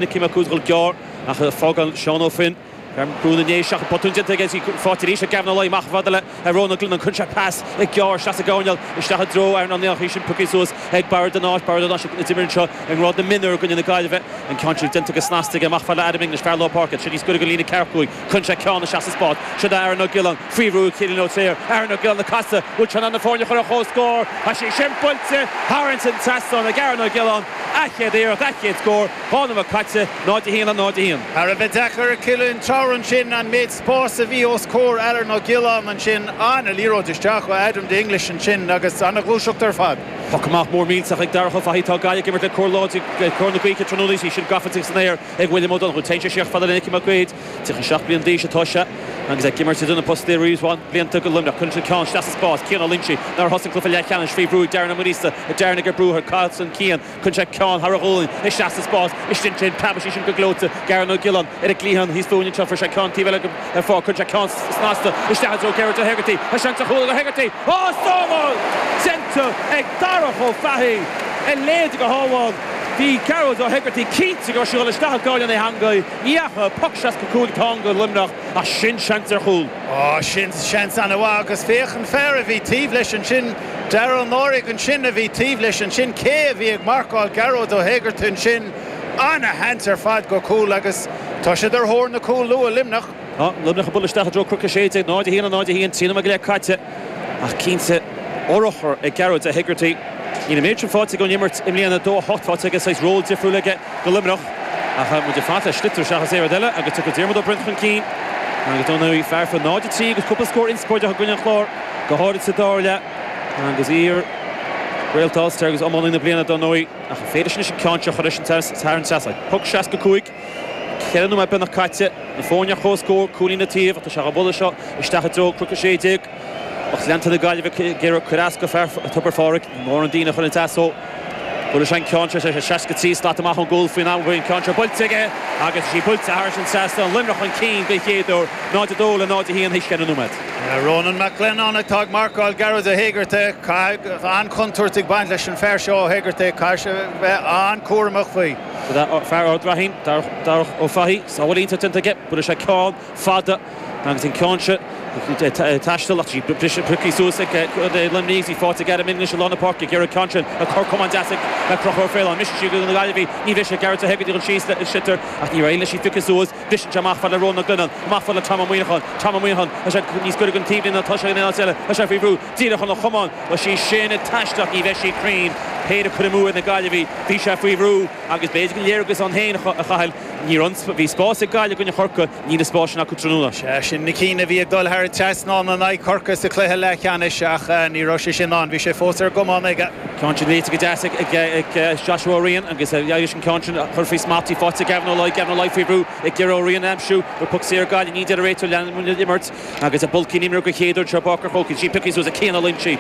Nicky Mac Uaid ag dul gearr ach fágann Seán Ó Finn brú na ndéise ach botún déanta aige is faighte arís ag Gavin Ó Laoi amach a fhad le Rónán Glennon cuireann sé pas i gearr isteach sa gcoirnéal isteach i dtreo Aaron Niland ach í sin pioctha suas ag Barra de Náis Barra de Náis a d'imir anseo i ngrád na mionúr i gcoinne na Gaillimhe an ceann sin déanta go snasta aige amach a fhad le Adam English fear lár páirce tríd níos gaire go líne ceathracha cúig Cuireann sé ceann isteach sa spás. Siod é Aaron Ó Giolláin, faoi bhrú Cillian Ó Treabhair. Aaron Ó Giolláin ag casadh. Bhfuil sé in ann na foirne a chur ar comhscór? Tá sé sin buailte! Thar an trasnán ag Aaron Ó Giolláin. A chéad iarracht, a chéad scór. Dhá nóiméad caite. 0 1 le 0 1. Thar a bheith deacair ar Cillian Ó Treabhair ansin an méid spáis a bhí os comhair Aaron Ó Giolláin ansin. An-liathróid isteach ó Adam English ansin agus an-ghluaiseacht ar fad. Poc amach mór millteach ag Darach Ó Fathaigh. Tá Gaillimh ag imirt le cóir láidir, cóir na gaoithe tráthnóna. Í sin gafa san aer. Ag William Ó Donnchú, téann sé siar a fhad le Nicky Mac Uaid, 37 bliain d'aois atá sé agus é ag imirt idir na postaí le roinnt mhaith blianta do Luimneach. Cuireann sé ceann isteach sa spás, Cian Ó Loingsigh, nár thosaigh cluiche leathcheannais faoi bhrú ag Darren Ó Muiríosa, Darren ag cur brú air, casann Cian. Cuireann sé ceann thar a ghualainn isteach sa spás, is sin sin, preabann sí sin go gleoite d'Aaron Ó Giolláin, ar an gcliathán thíos fúinn anseo, chuir sé ceann taobh eile go. ar fáil. Cuireann sé ceann snasta isteach i dtreo Gearóid Ó hEigeartaigh. Tá seans ar chúl ag Ó hEigeartaigh. Á, sábháil déanta ag Darach Ó Fathaigh. A leithéid de shábháil! Bhí Gearóid Ó hEigeartaigh cinnte go raibh sé dhul isteach i gcúl na heangaí. Ní dheachaigh, poc 65 atá ann do Luimneach ach sin seans ar chúl. Á, sin seans ana-mhaith agus féach an fear a bhí taobh leis ansin. Darragh Ó Náraigh ansin a bhí taobh leis ansin. Cé a bhí ag marcáil Gearóid Ó hEigeartaigh ansin? Ana-sheans ar fad go cúl agus tá siad ar thóir na cúl luath, Luimneach. Tá Luimneach ag dul isteach i dtreo cnoic 16, 0, 1, 0, 1, trí nóiméad go leith caite ach cinnte urchar ag Gearóid Hegarty. Níl an méid sin faighte aige ón imirt i mbliana, 2, 8, faighte aige, saghas ról difriúil aige do Luimneach. Ach tá muid ag fanacht le sliotar seachas aon rud eile agus tiocfaidh Diarmuid Ó Broin chun cinn agus dar ndóigh fear a fuair 0, 3 agus cúpla scór inspioráideach i gcoinne an Chláir, go háirithe sa dara leath agus iar-All Star agus iománaí na bliana, dar ndóigh. Ach an féidir leis an ceann seo a chur leis an teas thar an trasnán. Poc 65. Ceithre nóiméad beagnach caite. Na foirne ar chomhscór, cúilín le taobh ach tá sé á bhualadh seo isteach i dtreo cnoc 16. Lucht leanta na Gaillimhe ag iarraidh cur as do fear Tobar Phádraig. Ní mór an díon a chur ina teas ó bhuail sé an ceann seo. Tá sé 63 slat amach ón gcúl faoin am a bhfuil an ceann seo buailte aige agus tá sí buailte thar an trasnán. Luimneach chun cinn den chéad uair, 0-2 le 0-1 théis cheithre nóiméad. Ronan Mac Leannáin atá ag marcáil Gearóid Ó hEigeartaigh. Caithfidh go bhfuil an-chontúirt ag baint leis an fear seo Ó hEigeartaigh. Caithfidh sé a bheith an-cúramach faoi. Fear Ard Raithín, Darach Ó Fathaigh, sábháil iontach déanta aige. Buaileann sé ceann fada agus an ceann seo ag taisteal ach briseadh pioctha suas ag Luimneach agus í faighte ag Adam English i lár na páirce ag iarraidh ceann sin a chur comh deas ag Conchúr Ó Faoláin. Mise siúd na Gaillimhigh, ní bhrisfidh Gearóid Ó hEigeartaigh an síos le sliotar ach níor éirigh leis í a phiocadh suas. Briseann sé amach fad le Rónán Mag Leannáin, amach fad le Tom Ó Muíneacháin, Tom Ó Muíneacháin, tá sé níos gaire gon taobhlíne ná atá sé gon aon áit eile, tá sé faoi bhrú, díreach óna chamán, tá sí sin ag taisteal ach, ní bheidh sí cruinn, péire curtha amú ag na Gaillimhigh, bhí sé faoi bhrú agus b'fhéidir gur léargas ann féin, a Chathail, níor fhan, bhí spás ag Gaillimh i gcoinne Chorcaigh, níl an spás sin acu tráthnóna. Sea, sin na cinn a bhí ag dul thar an trasnán in aghaidh Chorcaigh sa chluiche leathcheannais ach ní raibh sé sin ann, bhí sé fós ar an gcamán aige. Ceann sin léite go deas ag Joshua Ó Riain agus éiríonn leis an ceann sin a chur faoi smacht. Í fáite ag Gavin Ó Laoi, Gavin Ó Laoi faoi bhrú ag iarraidh Ó Riain a aimsiú ar puc saor go Gaillimh é ní hea a deir an réiteoir. Lean an imirt agus Bulkey in imir go chéaduair treo páirc ar chóir. Í sin piocthaí suas ag Cian Ó Loingsigh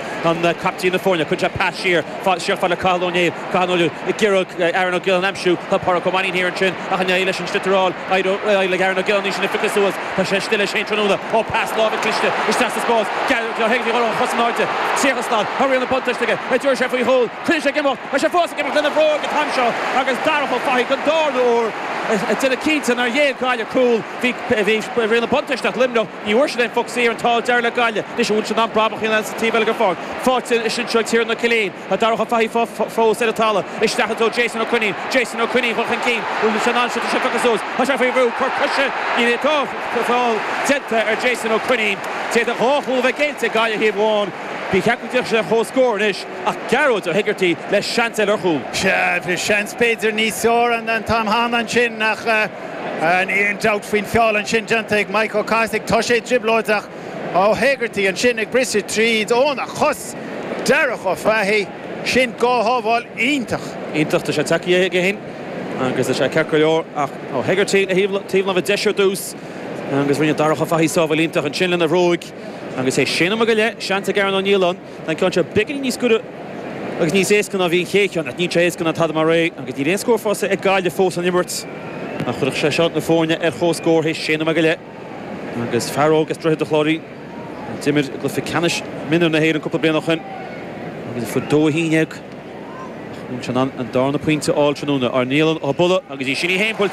captaen na foirne. Cuir sé pas siar siar fad le Cathal Ó Néill. Cathal Ó Néill ag iarraidh Aaron Ó Giolláin a aimsiú ach Pádraic Ó Mainnín thiar ansin. Ach ní éiríonn leis an sliotar a fháil éiríonn le gearradh na gceirníní sin a phiocadh suas, tá sé istigh leis féin tráthnóna, ó pas láimhe cliste isteach sa spás Gearóid Ó hÉigeartaigh ag dul ar cosa in airde. Seachas ná habair go raibh an buntáiste aige, a dúirt sé faoi chúl, coinnigh sé ag imeacht, tá sé fós ag imeacht, lena bhróig an t-am seo agus Darach Ó Fathaigh don darna uair ag déanamh cinnte nár ghéill Gaillimh cúl. Bhí rian an bhuntáiste ag Luimneach, ní bhfuair siad aon phoc saor an t-ádh dearg le Gaillimh. Anois an bhfuil siad in ann brabach a dhéanamh sa taobh eile den pháirc, fáite anseo ag Tiernan Killeen. Tá Darach Ó Fathaigh fós ar an talamh isteach i dtreo Jason Ó Coinín. Jason Ó Coinín chun chun cinn. San am seo tá sé pioctha suas. Tá sé faoi bhrú. Cor coise, tá feall déanta ar Jason Ó Coinín. D'fhéadfadh dhá chúl a bheith géillte ag Gaillimh taobh amháin. Ba cheart go mbeadh sé ar comhscór anois ach Gearóid Ó hÉigeartaigh le seans eile ar chúl. Sea, seans b'fhéidir níos fearr an t-am cheana ansin ach níl aon dabht faoin feall ansin déanta ag Maidhc Ó Cathasaigh. Tá sé i dtrioblóid ach Ó hÉigeartaigh ansin ag briseadh tríd óna chos! Darach Ó Fathaigh, sin dhá shábháil iontach. Iontach, tá sé tagtha chuige fhéin agus tá sé ceart go leor ach Ó hÉigeartaigh le taobh láimhe deis ar dtús agus rinne Darach Ó Fathaigh sábháil iontach ansin lena bhróig agus sé nóiméad go leith. Seans ag Aaron Ó Nialláin. Tá an ceann seo beagainín níos giorra agus níos éasca ná a bhí an chéad cheann ach níl sé éasca ná tada mar é agus níl aon scór faighte ag Gaillimh fós ón imirt ach chuirfeadh sé seo na foirne ar chomhscór théis sé nóiméad go leith. Agus fear óg as Droichead a' Chláirín a d'imir i gcluiche ceannais mionúir na hÉireann cúpla bliain ó shin agus a fuair dó a haon dhéag ach an bhfuil sé in ann an darna pointe a fháil tráthnóna. Aaron Niland an buille agus í sin í fhéin!